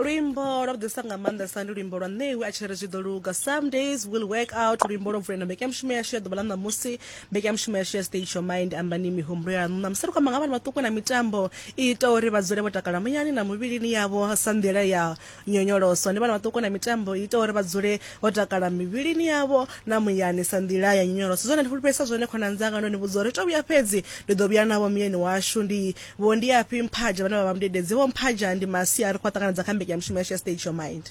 luimbo lwa vhuḓisa nga maanḓesa ndi luimbo lwa ṋewi a tshi ri zwi ḓo luga some days will work out luimbo lwo vulela mbekanyamushumo yashu ya ḓuvha ḽa ṋamusi mbekanyamushumo yashu ya state your mind ambani mihumbulo ya ṋu ṋamusi ri khou amba nga vhana vhaṱuku na mitambo i ita uri vha dzule vho takala muyani na muvhilini yavho sa nḓila ya nyonyoloso ndi vhana vhaṱuku na mitambo i ita uri vha dzule vho takala mivhilini yavho na muyani sa nḓila ya nyonyoloso zwone ndi fulufhedzisa zwone khonani dzanga ndo ni vhudza uri to vhuya fhedzi ndi ḓo vhuya navho muyeni washu ndi vho ndi afhi mphaja vhane vha vha mudededzi vho mphaja ndi masia ri khou ṱanganedza kha mbekanyamushumo yashu ya stage your mind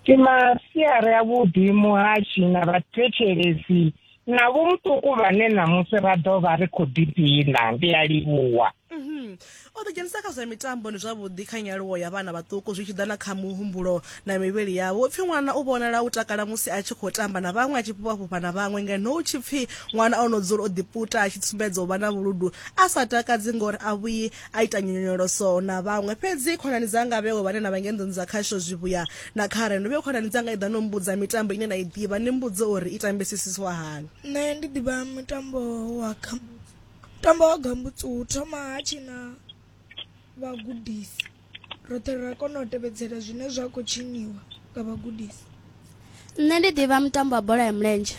ndi masiari avhuḓi muhashi na vhathetshelesi na vho muṱuku vhane ṋamusi ra ḓo vha ri khou ḓidina ndi a livhuwa O ḓidzhenisa kha zwa mitambo ndi zwavhuḓi kha nyaluwo ya vhana vhaṱuku zwi tshi ḓa na kha muhumbulo na mivhili yavho. Hu pfi ṅwana u vhonala u takala musi a tshi khou tamba na vhaṅwe, a tshi fhufha-fhufha na vhaṅwe ngeno hu tshi pfi ṅwana o no dzula o ḓiputa a tshi sumbedza u vha na vhuludu a sa takadzi ngori a vhuyi a ita nyonyoloso na vhaṅwe. Fhedzi khonani dzanga vheo vhane na vha ngei nḓuni dza khasho zwivhuya na khare ndo vheo khonani dzanga i ḓa no mmbudza mitambo ine na i ḓivha ni mmbudze uri i tambisisiswa hani. Nṋe ndi ḓivha mutambo wa kha. Tamba wa gambutsu hu thoma ha tshina vhagudisi roṱhe ra kona u tevhedzela zwine zwa khou tshiniwa nga vhagudisi nṋe ndi ḓivha mutambo wa bola ya mulenzhe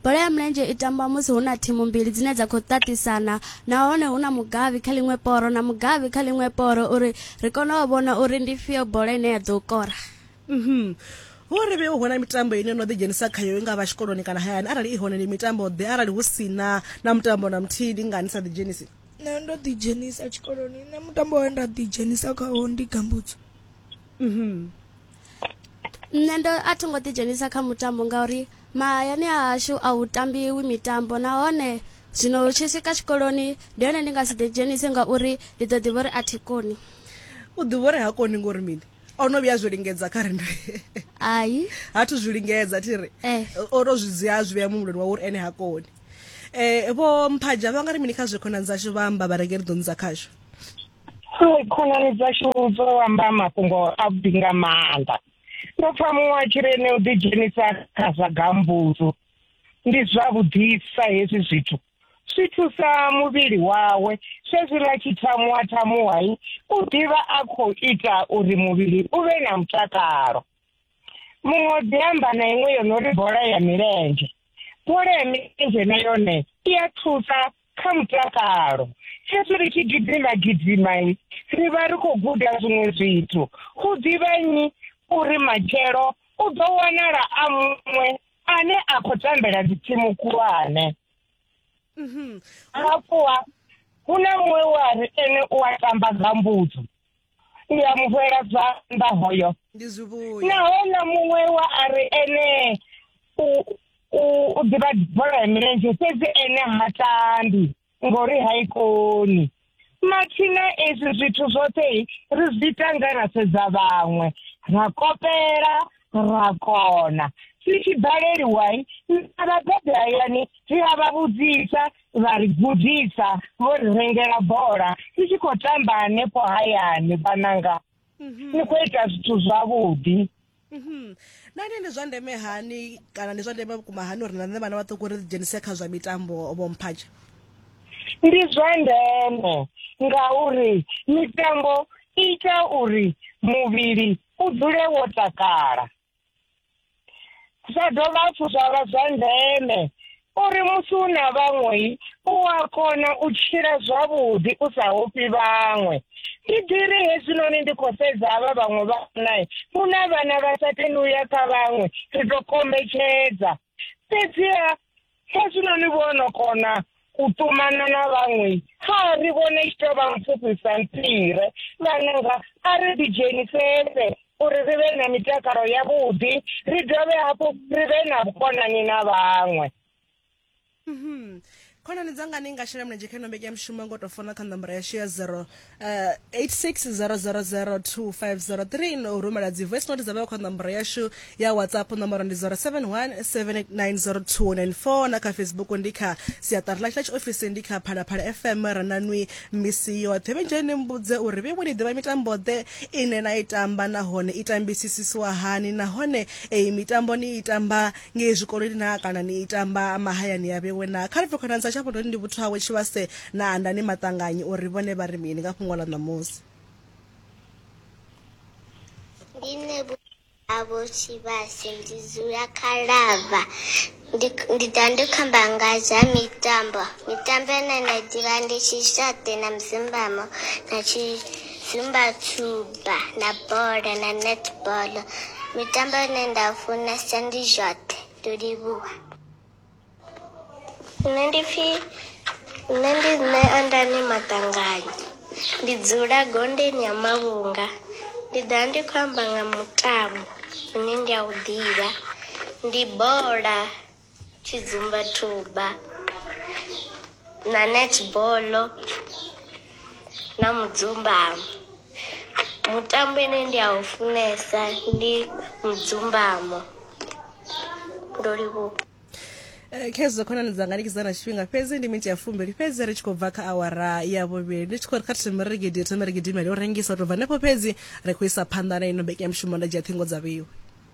bola ya mulenzhe i tamba musi hu na thimu mbili dzine dza khou ṱaṱisana nahone hu na mugavhi kha ḽiṅwe poro na mugavhi kha ḽiṅwe poro uri ri kone u vhona uri ndi fhio bola ine ya ḓo kora Mhm. Vho ri vhe hu na mitambo ine no ḓi dzhenisa khayo i nga vha tshikoloni kana hayani arali i hone ndi mitambo ḓe arali hu si na na mutambo na muthihi ndi nga ni sa ḓi dzhenisi nṋe ndo ḓi dzhenisa tshikoloni nṋe mutambo we nda ḓi dzhenisa khawo ndi gambutsu Mhm. nṋe ndo a tho ngo ḓi dzhenisa kha mutambo ngauri mahayani a hashu a hu tambiwi mitambo nahone zwino hu tshi swika tshikoloni ndi hone ndi nga si ḓi dzhenise ngauri ndi ḓo ḓivha uri a thi koni u ḓivha uri ha koni ngori mini o no vhuya zwi lingedza kha ri ai ha thu zwi lingedza thi ri eh. o to zwi dzia zwi vhea muhumbuloni wawe uri ene ha koni eh vho mphaja vha nga ri mini kha zwi khonani dzashu vha amba vha renge ri ḓo nidza khashu khonani dzashu dzo amba mafhungo a vhuḓi nga maanḓa ndo pfa muṅwe a tshi ri ene u ḓidzhenisa kha zwa gambuzu ndi zwavhuḓisa hezwi zwithu swi thusa muvhili wawe swezwiḽa tshithamuwa thamuwai u ḓivha a khou ita uri muvhili u vhe na mutakalo muṅwe o ḓi amba na iṅwe yo no ri bola ya milenzhe bola ya milenzhe na yone i a thusa kha mutakalo hezwi ri tshi gidima gidimai ri vha ri khou guda zwiṅwe zwithu hu ḓivha nnyi uri matshelo u ḓo wanala a muṅwe ane a khou tambela dzitsimu khulwane mhm. hafhuha hu na muṅwe we a ri ene u a tamba nga mbudzo ndi a mu fhela zwanḓa hoyo naho na muṅwe wa a ri ene u ḓivha bola ya milenzhe fhedzi ene ha tambi ngori ha i koni mathina ezwi zwithu zwoṱhe ri zwi tanga ra sedza vhaṅwe ra kopela ra kona si tshi baleliwai na vhabebi hayani ri a vha vhudzisa vha ri gudisa vho ri rengela bola ri tshi khou tamba hanefho hayani vhananga ni khou ita zwithu zwavhuḓi Mhm. nani ndi zwa ndeme hani kana ndi zwa ndeme vhukuma hani uri na nṋe vhana vhaṱuku ri ḓidzhenise kha zwa mitambo vhomphatshe ndi zwa ndeme ngauri mitambo i ita uri muvhili u dzule wo takala zwa dovha hafhu zwa vha zwa ndeme uri musi u na vhaṅwe u a kona u tshila zwavhuḓi u sa hofhi vhaṅwe ndi ḓiri hezwinoni ndi khou sedza havha vhaṅwe vhanae hu na vhana vha sa tendi u ya kha vhaṅwe ri tou kombetshedza fhedziha kha zwino ni vhono kona u ṱumana na vhaṅwe kha ri vhone tshi tou vha mpfufhisa mpire vhananga a ri ḓidzhenisese uri ri vhe na mitakalo yavhuḓi ri dovhe hafhu ri vhe na vhukonani na vhaṅwe Mhm. khonani dzanga ni nga shela mulenzhe kha ino mbekanyamushumo ngo tou fona kha ṋomboro yashu ya 0 uh, 860002503 no u rumela dzi voice note dza vheo kha ṋomboro yashu ya whatsapp ṋomboro ndi 0717890294 na kha facebook ndi kha siaṱari ḽashu ḽa tshiofisi ndi kha phalaphala fm rananwi misi yoṱhe vhenjheni ni mbudze uri vhe ni ḓivha mitambo ḓe ine na i tamba nahone i tambisisiswa hani nahone eyi mitambo ni i tamba ngei zwikoloni naa kana ni i tamba mahayani ya vhewe naa kha ri bve khonani dza Tshavhondoni ndi vhuthu hawe Tshivhase na Andani Maṱanganyi uri vhone vha ri mini nga fhungo ḽa ṋamusi. Ndi nṋe vhuthu havho Tshivhase ndi dzula kha Lava ndi ndi ḓa ndi kho amba nga zwa mitambo mitambo ine nda i ḓivha ndi Tshixaṱe na Muzimbamo na tshi Zumba tshuba na bola na netball mitambo ine nda funesa ndi zwoṱhe ndo livhuwa. Nṋe ndi pfhi nṋe ndi nṋe Andani Maṱanganya ndi dzula Gondeni ha Mavhunga ndi ḓa ndi khou amba nga mutambo une ndi a u ḓivha ndi bola tshidzumbathuba na netball na mudzumbamo mutambo ine ndi a u funesa ndi mudzumbamo ndo livhuwa Eh, khezwo khonani dzanga ndikidza na tshifhinga fhedzi ndi minti ya fumbili fhedzi ri tshi khou bva kha awara ya vhuvhili ndi tshi khou ri kha thome ri gidi thome ri gidimele u rengisa u tou bva henefho fhedzi ri khou isa phanḓa na ino mbekanyamushumo nda dzhia ṱhingo dza vheiwe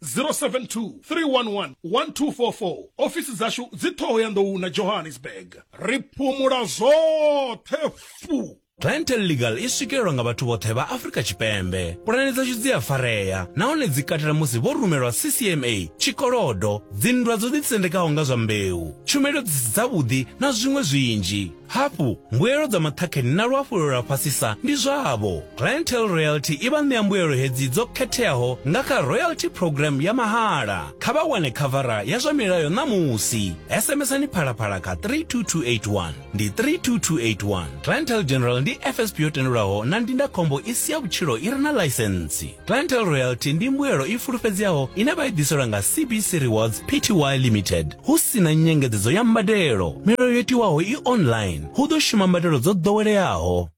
072 311 1244 ofisi dzashu dzi ṱhoho ya nḓou na johannesburg ri phumula zwoṱhe fu Clientele Legal i swikelelwa nga vhathu vhoṱhe vha Afrika Tshipembe. Pulane dzashu dzi a farea nahone dzi katela musi vho rumelwa CCMA, tshikolodo, dzinndwa dzo ḓitsendekaho nga zwa mbeu, tshumelo dzi si dzavhuḓi na zwiṅwe zwinzhi. Hafhu, mbuelo dza maṱhakheni na luhafhulelo lwa fhasisa ndi zwavho. Clientele Royalty i vha ṋea mbuelo hedzi dzo khetheaho nga kha Royalty Programme ya mahala. Kha vha wane khavara ya zwa milayo ṋamusi. SMS-ani Phalaphala kha 32281. Ndi 32281. Clientele General ndi FSP yo tendelwaho na ndindakhombo i si ya vhutshilo i re na ḽaisentsi. Clientele loyalty ndi mbuelo i fulufhedzeaho ine vha i ḓiselwa nga CBC Rewards Pty Limited hu si na nyengedzedzo ya mbadelo. Milayo yo tiwaho i online, hu ḓo shuma mbadelo dzo ḓoweleaho.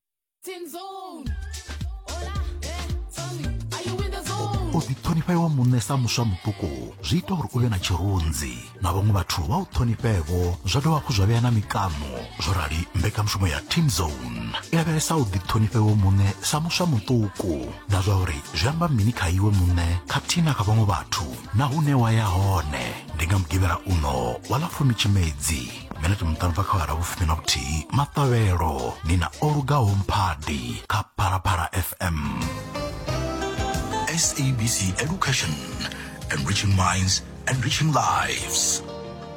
u ḓiṱhonifha iwe muṋe sa muswa muṱuku zwi ita uri u vhe na tshirunzi na vhaṅwe vhathu vha u ṱhonifhevo zwa dovha hafhu zwa vhea na mikano zwo rali mbekanyamushumo ya team zone i lavhelesa u ḓiṱhonifhewo muṋe sa muswa muṱuku na zwa uri zwi amba mini kha iwe muṋe khathihi na kha vhaṅwe vhathu na hune wa ya hone ndi nga mugivhela uno wa ḽa fumi tshimedzi mene ti muṱalubva kha vhara vhufumi na vhuthihi maṱavhelo ni na o lugaho mphadi kha phalaphala fm sabc education enriching minds enriching lives